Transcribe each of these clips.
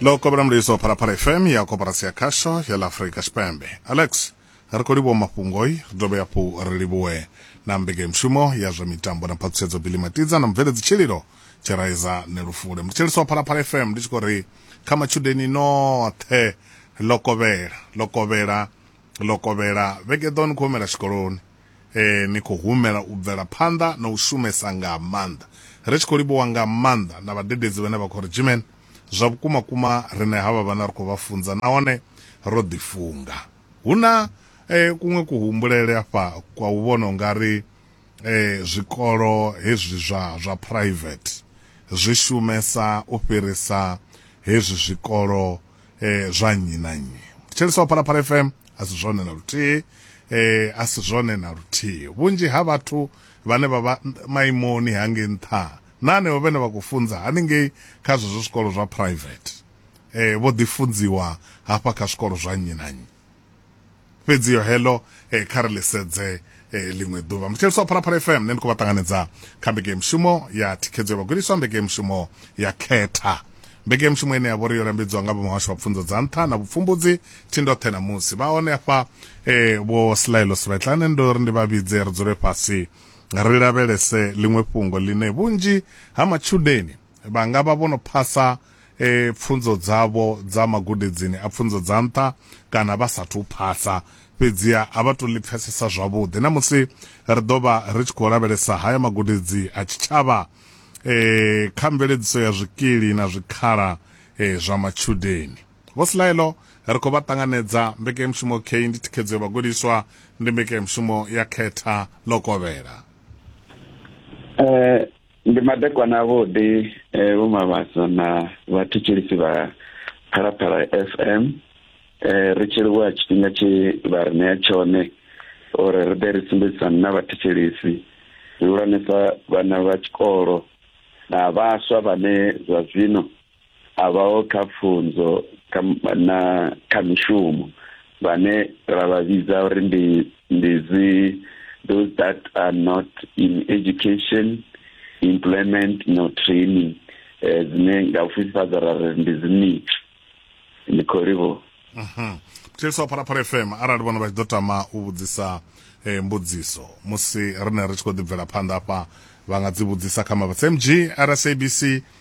ḽo kovhela mulayiso phalaphala fm ya koporasi ya khasho ya ḽa afurika tshipembe alex ri khou livhuwa mafhungoi ri dovhe hafhu ri livhuwe na mbekanyamushumo ya zwa mitambo na phaṱhutshedzo bili matidza na mubveledzi tshililo tshiraiza nelufule ndi tshiliso wa phalaphala fm ndi tshi khou ri kha matshudeni noṱhe ḽo kovhela ḽo kovhela ḽo kovhela vhege ḓo ni khou humela tshikoloni eh, ni khou humela u bvela phanḓa na u shumesa nga maanḓa ri tshi khou livhuwa nga maanḓa na vhadededzi vhane vha khou ri jimen zwa vhukuma kuma rine havha vhana ri khou vha funza nahone ro ḓifunga hu na eh, kuṅwe kuhumbulele afha kwa u vhona unga ri eh, zwikolo hezwi zwa zwa private zwi shumesa u fhirisa hezwi zwikolo eh, zwa nnyi na nnyi thetshelesa wa phalaphala fm a si zwone na luthihi eh, a si zwone na luthihi vhunzhi ha vhathu vhane vha vha maimoni hangei nṱha na hanevho vhene vha khou funza haningei kha zwezwo zwikolo zwa private eh, vho ḓifunziwa hafha kha zwikolo zwa nnyi na nnyi fhedzi yo hello eh, kha ri lisedze eh, ḽiṅwe ḓuvha muthetshelesi wa phalaphala fm nṋe ndi khou vha ṱanganedza kha mbeke mushumo ya thikhedzo ya vhagudiswa mbeke mushumo ya khetha mbeke mushumo ine ya vhori yo lambedziwa nga vhamuhasho wa pfunzo dza nṱha na vhupfumbudzi thindoṱhe na musi vha hone afha eh, vho silaelo sivetlane ndo ri ndi vha vhidze ri dzule fhasi ri lavhelese ḽiṅwe fhungo ḽine vhunzhi ha matshudeni vha nga vha vho no phasa e, pfunzo dzavho dza magudedzini a pfunzo dza nṱha kana vha sathu u phasa fhedziha a vha to ḽi pfesesa zwavhuḓi na musi ri ḓo vha ri tshi khou lavhelesa haya magudedzi a tshitshavha e, kha mveledziso ya zwikili na zwikhala e, zwa matshudeni vho silaelo ri khou vha ṱanganedza mbekanyamushumo k ndi thikhedzo ya vhagudiswa ndi mbekanyamushumo ya khetha ḽo kovhela eh, ndi madekwana avhuḓi eh, vho mavhaso na vhathetshelisi vha phalaphala fm eh, ri tshi livhuwa tshifhinga tshi vha ri ṋea tshone uri ri ḓe ri sumbedzisane na vhathetshelisi zwihulwanesa vhana vha tshikolo na vhaswa vhane zwa zwino a vhaho kha pfunzo na kha mishumo vhane ra vha vhidza uri ndi ndi dzi those that are not in education employment no training eh, dzine nga u fhifhadza ra ri ndi dzi nit ndi khou livho mhm. thetshelesi wa phalaphala fm arali vhona vha tshi ḓo tama u vhudzisa eh, mbudziso musi rine ri tshi khou ḓibvela phanḓa afha vha nga dzi vhudzisa kha mavhatsa mg rsabc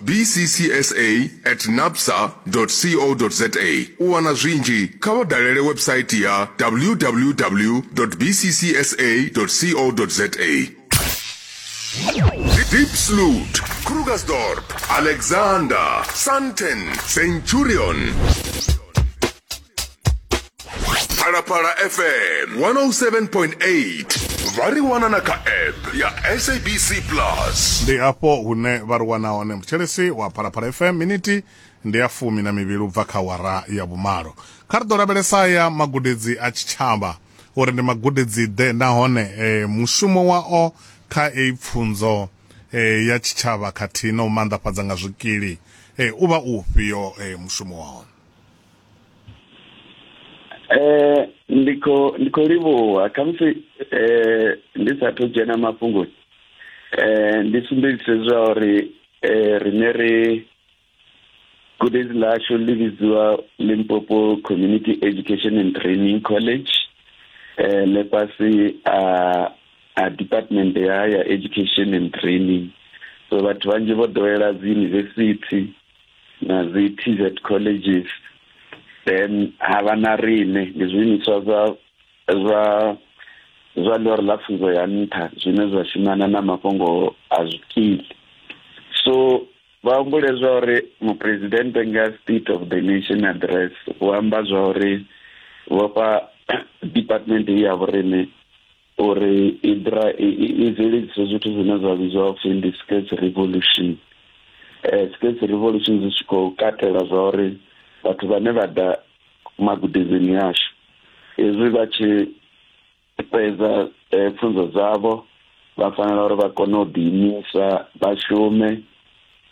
bccsa at napsa co za u wana zwinzhi kha vha dalele website ya www bccsa co za Diepsloot, Krugersdorp, Alexander, Sandton, Centurion. phalaphala fm 107.8 vha ri wana na kha app ya sabc plus ndi afho hune vha ri wana hone mutshelesi wa phalaphala fm miniti ndi ya fumi na mivhili u bva kha wara ya vhumalo kha ri ḓo lavhelesa ya magudedzi a tshitshavha uri ndi magudedzi ḓe nahone e, mushumo wao kha eyi pfunzo e, ya tshitshavha khathihi na u maanḓafhadza nga zwikili e, u vha u ufhio e, mushumo wao eh ndi kho ndi kho livhuwa khamusi eh ndi sathu dzhena mafhungoni eh ndi sumbedzise zwa uri eh rine ri gudedzi ḽashu ḽi vhidziwa limpopo community education and training college eh le fhasi a a department ya ya education and training so vhathu vhanzhi vho ḓowela dzi university na dzi TZ colleges then ha vha na riṋe ndi zwiimiswa zwa zwa zwa ḽori ḽa pfunzo ya nṱha zwine zwa shumana na mafhungo a zwikili so vha humbule zwa uri muphuresidennde nga state of the nation address u amba zwa uri vhofha department ya vhorine uri i dra i bveledzise zwithu zwine zwa vhidzwa upfhi ndi skate revolution eh skate revolution zwi tshi khou katela zwa uri vhathu vhane vha ḓa magudedzini yashu hezwi vha tshi fhedza eh, pfunzo dzavho vha fanela uri vha kone u ḓiimisa vha shume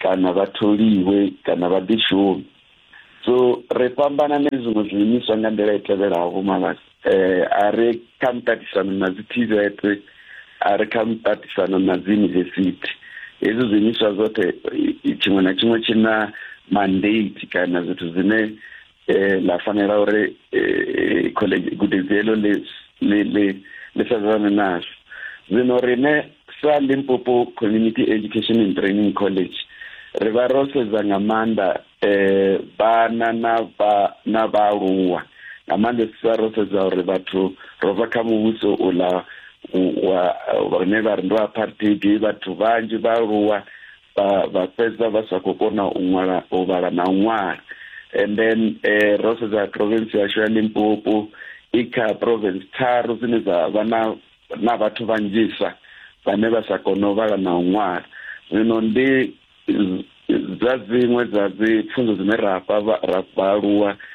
kana vha tholiwe kana vha ḓi shumi so ri fhambana na zwiṅwe zwiimiswa nga nḓila i tevhelaho vho mavhasi um eh, a ri kha muṱaṱisano na dzi tvet a ri kha muṱaṱisano na dzi yunivesithi hezwi zwiimiswa zwoṱhe tshiṅwe na tshiṅwe tshi na mandate kana zwithu zwine eh la fanela gore eh college gudedzelo le le le le sazana nazo zino rine sa Limpopo Community Education and Training College ri vha ro sedza nga maanḓa eh vhana na vha na vhaaluwa nga maanḓa sa ro sedza uri vhathu ro bva kha muvhuso uḽa wa vhane vha ri ndo apartheid vhathu vhanzhi vhaaluwa vha vha fhedza vha sa khou kona u ṅwala u vhala na u ṅwala and then eh, ro sedza province yashu ya limpopo i kha province tharu dzine dza vha na na vhathu vhanzhisa vhane vha sa kone u vhala na u ṅwala zwino ndi dza dziṅwe dza dzi pfunzo dzine ra fha vha- ra vhaaluwa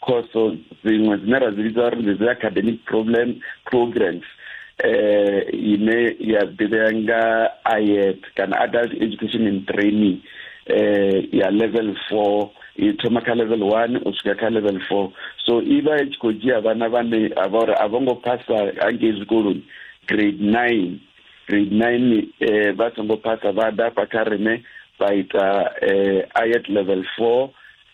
khoso dziṅwe dzine ra dzi vhidza uri ndi dzi academic problem programs eh ine ya ḓivhea nga IET kana adult education and training eh ya level 4 i thoma kha level 1 u swika kha level 4 so i vha i tshi khou dzhia vhana vhane a vha uri a vho ngo phasa hangei zwikoloni grade 9 grade 9 eh vha songo phasa vha ḓa fha kha rine vha ita eh IET level 4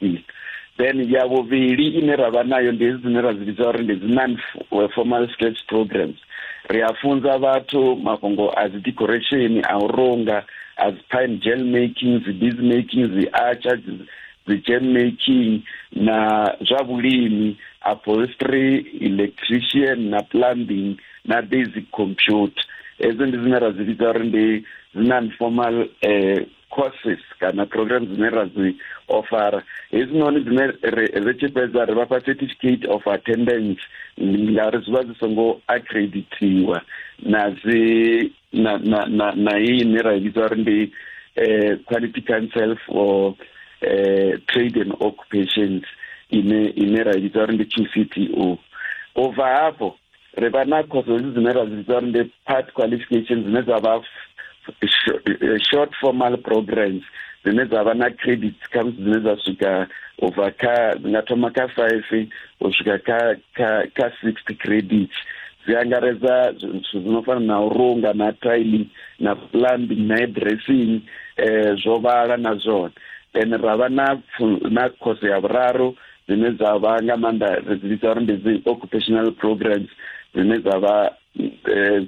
mm. then ya vhuvhili ine ra vha nayo ndi hedzi dzine ra dzi vhidza uri ndi dzi non eh, formal skills programs ri a funza vhathu mafhungo a dzi decoration a u runga a dzi pine gel making dzi bees making dzi archer dzi gem making na zwa vhulimi upholstery electrician na plumbing na basic computer hedzo ndi dzine ra dzi vhidza uri ndi dzi non formal um eh, courses kana program dzine ra dzi ofara hedzinoni dzine ri tshi fhedza ri vhafha certificate of attendance ngauri zwi vha zwi songo accreditiwa na dzi na na na na iyi ine ra vhidza uri ndi eh, quality council for eh, trade and occupations ine ine ra vhidza uri ndi qcto u bva hafho ri vha na khoso hedzi dzine ra dzi vhidza uri ndi part qualification dzine dza vha eh, short formal programs dzine dza vha na credits khamusi dzine dza swika u bva kha dzi nga thoma kha five u swika kha kha kha sixty credits dzi angaredza zwithu zwi no fana na u runga na tiling na plumbing na dressing um eh, zwo vhala na zwone then ra vha na na khoso ya vhuraru dzine dza vha nga maanḓa ri dzi vhidza uri ndi dzi occupational programs dzine dza vha eh,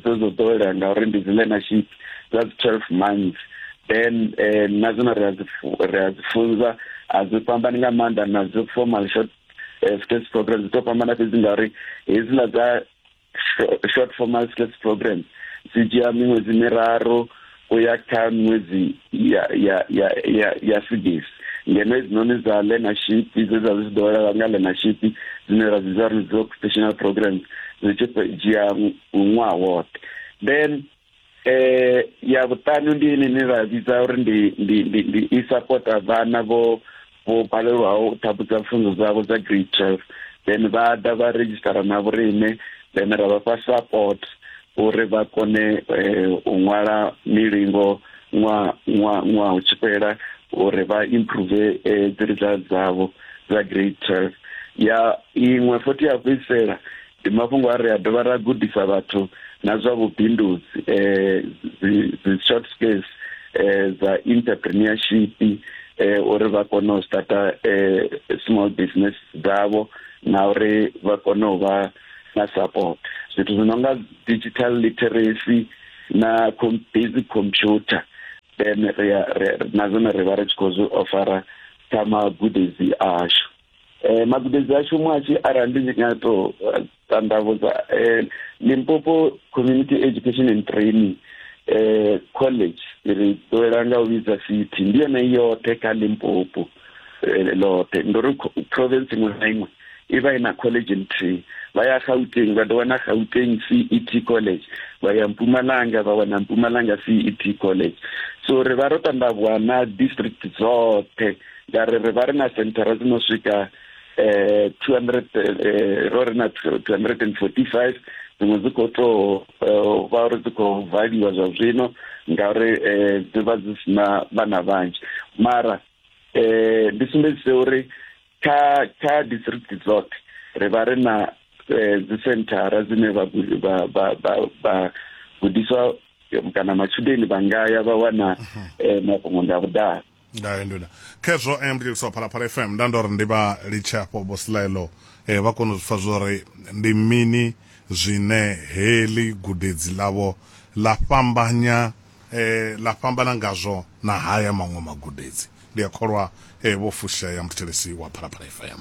dzo dzo ḓowelea ngauri ndi dzi learnership dza dzi twelve months then eh, na dzone ri a dzi fu- ri a dzi funza a dzi fhambani nga maanḓa na dzi formal short eh, skills programs dzi to fhambana fhedzi ngauri hedziḽa dza short formal stress program dzi dzhia miṅwedzi miraru u ya kha miṅwedzi ya ya ya ya ya sigisi ngeno hedzinoni dza learnership dze dza zwi ḓo lavha nga learnership dzine ra dzi dza ri dzi occupational programs dzi tshi dzhia ṅwaha woṱhe then eh ya vhuṱanu ndi ine ine ra vhidza uri ndi ndi ndi ndi i supporta vhana vho vho balelwaho u ṱhaphudza pfunzo dzavho dza grade twelve then vha ḓa vha redzhisitara na vhorine then ra vha fha support uri vha kone eh, u ṅwala milingo ṅwaha ṅwaha ṅwaha u tshi fhela uri vha improve eh, dzi results dzavho dza grade twelve ya iṅwe futhi ya fhedzisela ndi mafhungo a ri a dovha ra gudisa vhathu na zwa vhubindudzi um short space um dza entrepreneurship um uri vha kone u starta um small business dzavho na uri vha kone u vha na support zwithu zwi no nga digital literacy na basic computer then ri na zwone ri vha ri tshi khou zwi ofara kha magudedzi ashu Eh, magudedzi ashu mwashi arali ndi nga to eh, tandavhudza eh, limpopo community education and training eh, college ri ḓowela nga u vhidza city ndi yone yoṱhe kha limpopo eh, loṱhe ndo ri co- province iṅwe na iṅwe i vha i na college nthihi vha ya gauteng vha ḓo wana gauteng cet college vha ya mpumalanga vha wana mpumalanga cet college so ri vha ro tandavhuwa na district dzoṱhe ya ri ri vha ri na senthara dzi no swika eh 200 eh, ro ri na 245 dziṅwe dzi khou to eh, vha uri dzi khou valiwa zwa zwino ngauri eh, dzi vha dzi sina vhana vhanzhi mara eh ndi sumbedzise uri kha kha district dzoṱhe ri vha ri na eh, dzi senthara dzine vha gudiswa kana matshudeni vha ngaya vha wana mhm. eh, mafhungo nda vhudalo ndayo nduna khezwo um ndi tshiliso phalaphala fm nda ndo ri ndi vha litshe afho vhosilaelo um vha kone u zwi pfa zwo ri ndi mini zwine heḽi gudedzi ḽavho ḽa fhambanya eh la fhambana ngazwo na haya maṅwe magudedzi ndi a kholwa eh vho fushea muthelesi wa phalaphala fm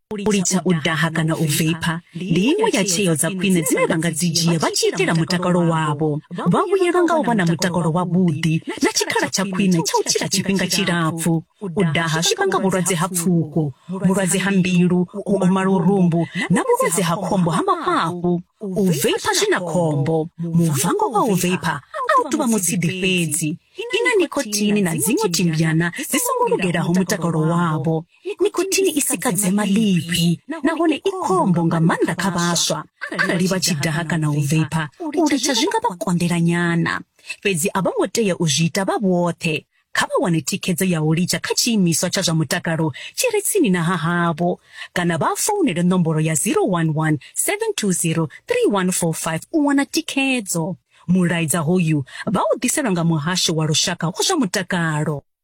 u litsha u daha kana u veipha ndi iṅwe ya tsheo dza khwine dzine vha nga dzi dzhia vha tshi itela mutakalo wavho vha vhuyelwa nga u vha na mutakalo wavhuḓi na tshikhala tsha khwine tsha u tshila tshifhinga tshilapfu u daha zwi vhanga vhulwadze ha pfuko vhulwadze ha mbilu u oma lurumbu na vhulwadze ha khombo ha mafhafhu u veipha zwi na khombo muvango wa u veipha a u tuvha mutshidi fhedzi i na nikotini na dziṅwe timbyana dzi songo lugelaho mutakalo wavho nikothini i sika dzema ḽifhi nahone i khombo nga maanḓa kha vhaswa arali vha tshi daha kana u veipha u litsha zwi nga vha konḓela nyana fhedzi a vho ngo tea u zwi ita vha vhoṱhe kha vha wane thikhedzo ya u litsha kha tshiimiswa tsha zwa mutakalo tshi re tsini na ha havho kana vha founele nomboro ya 011 720 3145 u wana thikhedzo mulaedza hoyu vha u ḓiselwa nga muhasho wa lushaka wa zwa mutakalo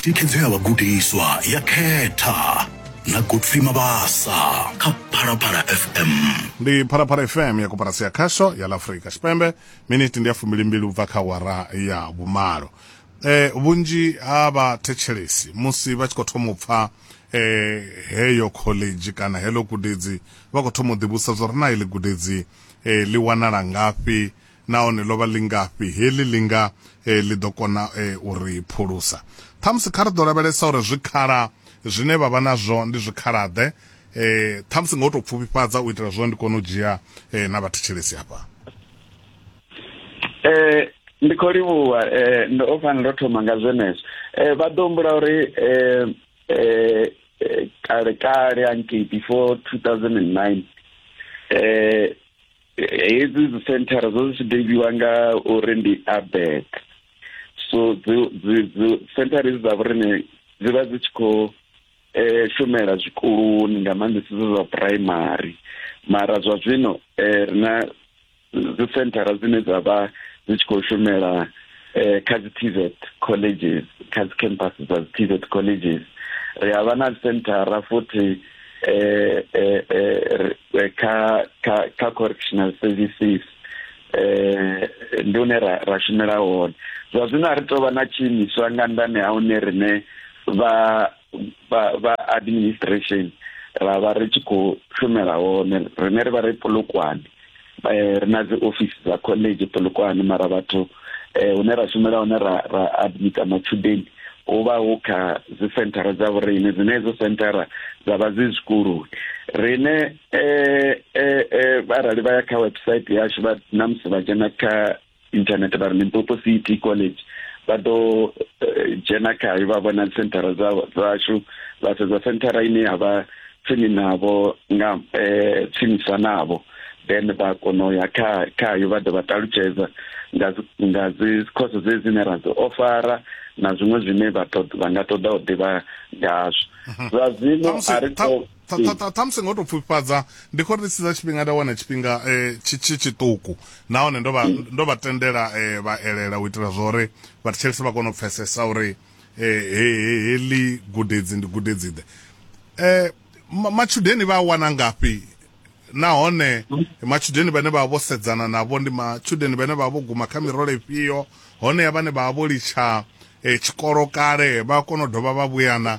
thikhedzo ya vhagudiswa ya khetha na godfrey mabasa kha phalaphala fm ndi phalaphala fm ya koporasi ya khasho ya la afurika tshipembe miniti ndi ya fumbilimbili u bva kha wara ya vhumalo e, vhunzhi ha vhathetshelesi musi vha tshi khou thoma u pfa e, heyo khoḽedzhi kana heḽo gudedzi vha khou thoma u ḓivhusa zwo ri na iḽi gudedzi e, ḽi wanala ngafhi nahone ḽo vha ḽingafhi heḽi ḽi nga eh, ḽi ḓo kona eh, u ri phulusa ṱhamusi kha ri ḓo lavhelesa uri zwikhala zwine vha vha nazwo ndi zwikhala-ḓe eh, ṱhamusi nga u tou pfufhifhadza u itela zwo ndi kone u dzhia eh, na vhathetshelesi hafha eh ndi khou livhuwa eh ndo o fanela ndo thoma nga zwenezwo eh vha ḓo humbula uri eh eh, eh kale kale hanki before 2009 eh hedzi dzi senthara dzo dzi tshi nga uri ndi abek so senthara idzi dza vhorine dzi vha dzi tshi khou um shumela zwikoloni nga maanḓesa zwe zwa phuraimari mara zwa zwino um ri na dzi senthara dzine dza vha dzi tshi khou shumela um kha dzi tvet colleges kha dzi campus dza dzi tvet colleges ri a vha na senthara futhi eh, eh, eh, eh kha kha kha correctional services eh ndi hune ra ra shumela hone zwa zwino a ri tou vha na tshiimiswa nga ndani ha hune rine vha vha administration ra vha ri tshi khou shumela hone rine ri vha ri polokwane eh, ri na dzi office dza college polokwane mara vhathu eh, hune ra shumela hone ra, ra admita matshudeni hu vha hu kha dzi senthara dza vhorine dzine hedzo senthara dza vha dzi zwikoloni rine eh, eh, eh, arali vha ya kha website yashu vha namusi vha dzhena kha internet vha ri limpopo city college vha ḓo eh, dzhena khayo vha vhona senthara dzashu vha sedza senthara ine ya vha tsini navho nga eh, tsinisa navho then vha kono ya kha khayo vha ḓo vha ṱalutshedza nga nga dzi course dze dzine ra dzi ofara na zwiṅwe zwine vha nga ṱoḓa u ḓivha ngazwo mhm. zwa zwino a ri ṱhamusi ngo to pfufhifhadza ndi khou ri siza tshifhinga nda wana tshifhinga um tshi tshiṱuku nahone ndo vha ndo vha tendela um vha elela u itela zwa uri vhathetshelesi vha kone u pfesesa uri heḽi gudedzi ndi gudedzi ḓe um matshudeni vha a wana ngafhi nahone matshudeni vhane vha vha vho sedzana navho ndi matshudeni vhane vha vha vho guma kha mirole ifhio honeya vhane vha vha vho litsha um tshikolo kale vha kona u dovha vha vhuyana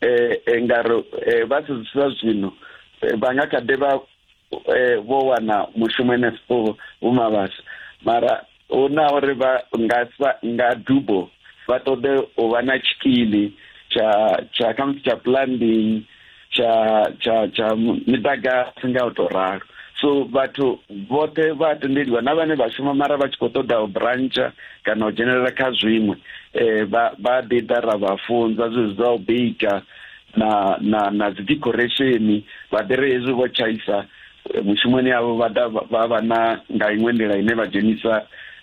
eh, eh nga ri eh, vha sedzisa zwino eh, vha nga kha ḓi vha eh, vho wana mushumo henefho vhumavhasa mara hu na uri vha nga sa- nga dubo vha ṱoḓe u vha na tshikili tsha tsha khamusi tsha plumbing tsha tsha tsha miḓagasi nga u tou ralo so vhathu vhoṱhe vha tendeliwa na vhane vha shuma mara vha tshi khou ṱoḓa u brantsha kana u dzhenelela kha zwiṅwe eh vha vha ḓi ḓa ra vha funza zwezwi zwa u bika na na na dzi decoration vha ḓi ri hezwi vho tshaisa eh, mushumoni yavho vha ḓa vha- vha vha na nga iṅwe nḓila ine vha dzhenisa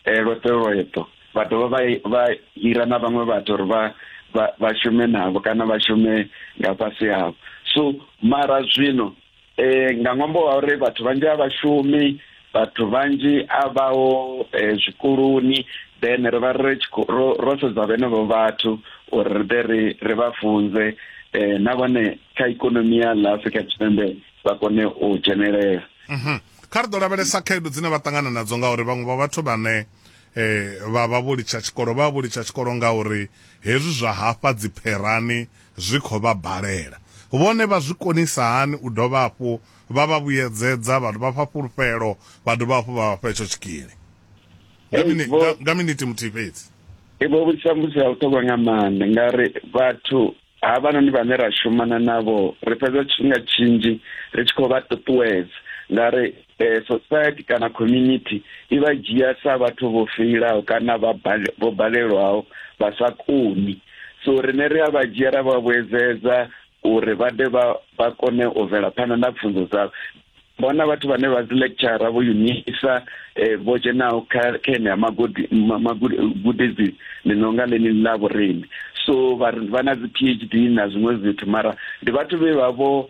eh, lweṱo lweṱo vha dovha vha vha hira na vhaṅwe vhathu uri vha vha vha shume navho kana vha shume nga fhasi havho so mara zwino e, nga ṅwambo wa uri vhathu vhanzhi a vhashumi vhathu vhanzhi a vhaho e, zwikoloni then ri vha ri ro sedza vhenevho vhathu uri ri ḓe ri ri vha funze um na vhone kha ikonomi ya ḽa afrika tshipembe vha kone u dzhenelela mhm. kha ri ḓo lavhelesa khaedu dzine vha ṱangana nadzo ngauri vhaṅwe vha vhathu vhane um vha vha vho litsha tshikolo vha vha vho litsha tshikolo ngauri hezwi zwa hafha dzipherani zwi khou vha balela, vhone vha zwi konisa hani u dovha hafhu vha vha vhuyedzedza, vha vha fha fhulufhelo, vha dovha hafhu vha vha fha itsho tshikili nga, hey, mini, nga, nga miniti muthihi fhedzi? Vho vhudzisa mbudziso ya vhuṱhogwa nga maanḓa ngauri vhathu havhanoni vhane ra shumana navho ri fhedza tshifhinga tshinzhi ri tshi khou vha ṱuṱuwedza ngauri eh, society kana community i vha dzhia sa vhathu vho feilaho kana vha bale- vho balelwaho vha sa koni so rine ri a vha dzhia ra vha vhuedzedza uri vha de vha vha kone u bvela phanḓa na pfunzo dzavho bona vhathu vhane vha dzi lecture vho unisa eh, vho dzhenaho kha kha enea magudi- ma- magudi- gudedzi ḽi no nga ḽeneḽi ḽa vhorimi so vha ri- vha na dzi phd na zwiṅwe zwithu mara ndi vhathu vhe vha vho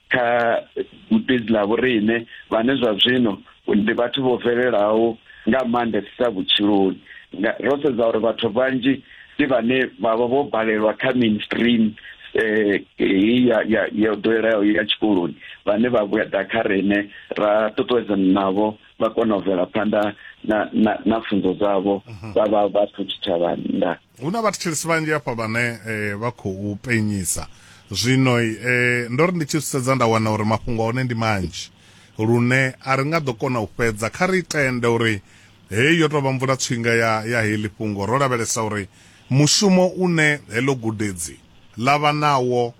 kha gudedzi ḽa vhoriṋe vhane zwa zwino ndi vhathu vho bvelelaho nga maanḓesesa vhutshiloni ro sedza uri vhathu vhanzhi ndi vhane vha vha vho balelwa kha mainstream eh ya ya ya ḓoweleaho ya tshikoloni vhane vha vhuya ḓa kha rene ra ṱuṱuwedzana navho vha kona u bvela phanḓa na na na pfunzo dzavho mhm. vha vha vha thu tshitshavha nda Hu na vhathetshelesi vhanzhi hafha vhane vha khou penyisa. Zwino ndo ri ndi tshi zwi sedza nda wana uri mafhungo a hone ndi manzhi lune a ri nga ḓo kona u fhedza. Kha ri tende uri heyi yo tou vha mvulatswinga ya ya heḽi fhungo, ro lavhelesa uri mushumo une heḽo gudedzi ḽa vha nawo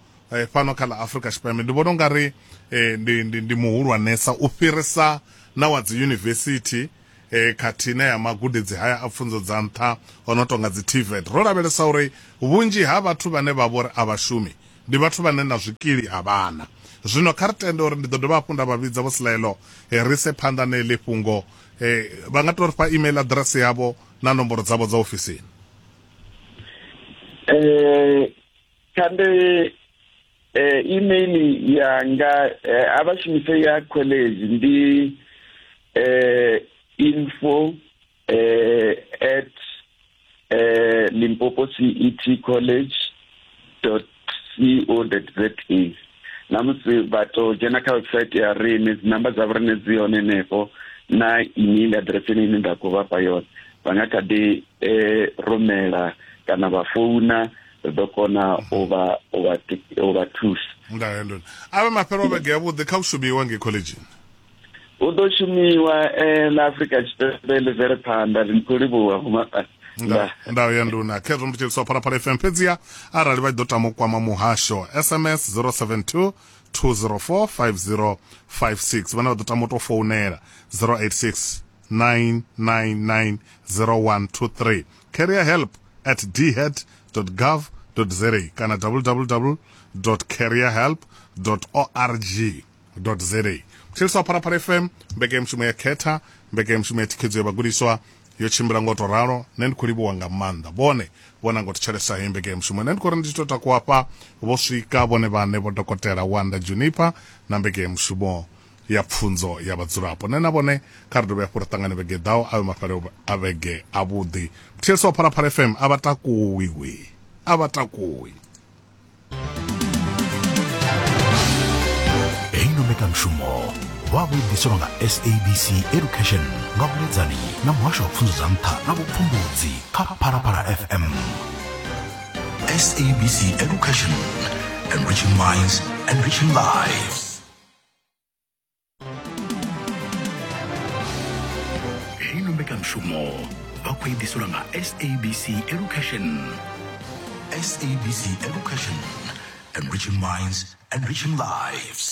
fhano kha ḽa Afrika Tshipembe ndi vhona u nga ri ndi, ndi, ndi muhulwanesa u fhirisa na wa dziyunivesithi. e, khathihi na ya magudedzi haya a pfunzo dza nṱha o no tonga dzi TVET, ro lavhelesa uri vhunzhi ha vhathu vhane vha vhori a vha shumi ndi vhathu vhane na zwikili a vha na. Zwino kha ri tende uri ndi ḓo dovha hafhu nda vha vhidza Vho Slelo e, ri ise phanḓa na heḽi fhungo. E, vha nga tou ri fha email aḓirese yavho na nomboro dzavho dza ofisini. Eh, kha ndi eh, email yanga eh, a vha shumise ya college ndi eh, info eh, at eh, limpopo cet college co za na musi vha to dzhena kha website ya rine dzi namba dza vhorine dzi hone henefho na email address ine ine nda khou vhafha yone vha nga kha ḓi eh, rumela kana vha founa ri ḓo kona u vha u vha u vha thusa ndahe ndo avhe mafhelo a vhege yavhuḓi kha u shumiwa ngei khoḽedzhini hu ḓo shumiwa eh, na afrika tshipembe ḽi bvele phanḓa ri khou livhuwa vhumaṱani ndayo ya nduna khezwo ndi tsheliswa phalaphala fm fhedziha arali vha ḓo tama u kwama muhasho sms 072 204 5056 vhane vha ḓo tama u tou founela 086 999 0123 carrier help at dhet gov za kana www carrier help org za kutshiliswa pharapara fm mbekemushumo ya khetha mbekemushumo ya thikhedzo ya vhagudiswa yo tshimbila ngo to ralo nṋe ndi khou livhuwa nga maanḓa vhone vhona ngo thetshelesa heyi mbekemushumo nṋe ndi khou ri ndi tshi tou takuwafha vho swika vhone vhane vho dokotela wanda juniper na mbekemushumo ya pfunzo ya vhadzulapo nṋe na vhone kha ri dovhe hafhu ri ṱangane vhege ḓaho a vhe mafhale a vhege avhuḓi mthetsho wa phalaphala fm a vha takuwi we a vha takuwi heyi no mbekanmushumo vha vho ḓiselwa nga sabc education nga vhuledzani na muhasho wa pfunzo dza nṱha na vhupfumbudzi kha phalaphala fm sabc education enriching minds enriching lives ino mbekanyamushumo vha khou i ḓiselwa nga sabc education sabc education enriching minds enriching lives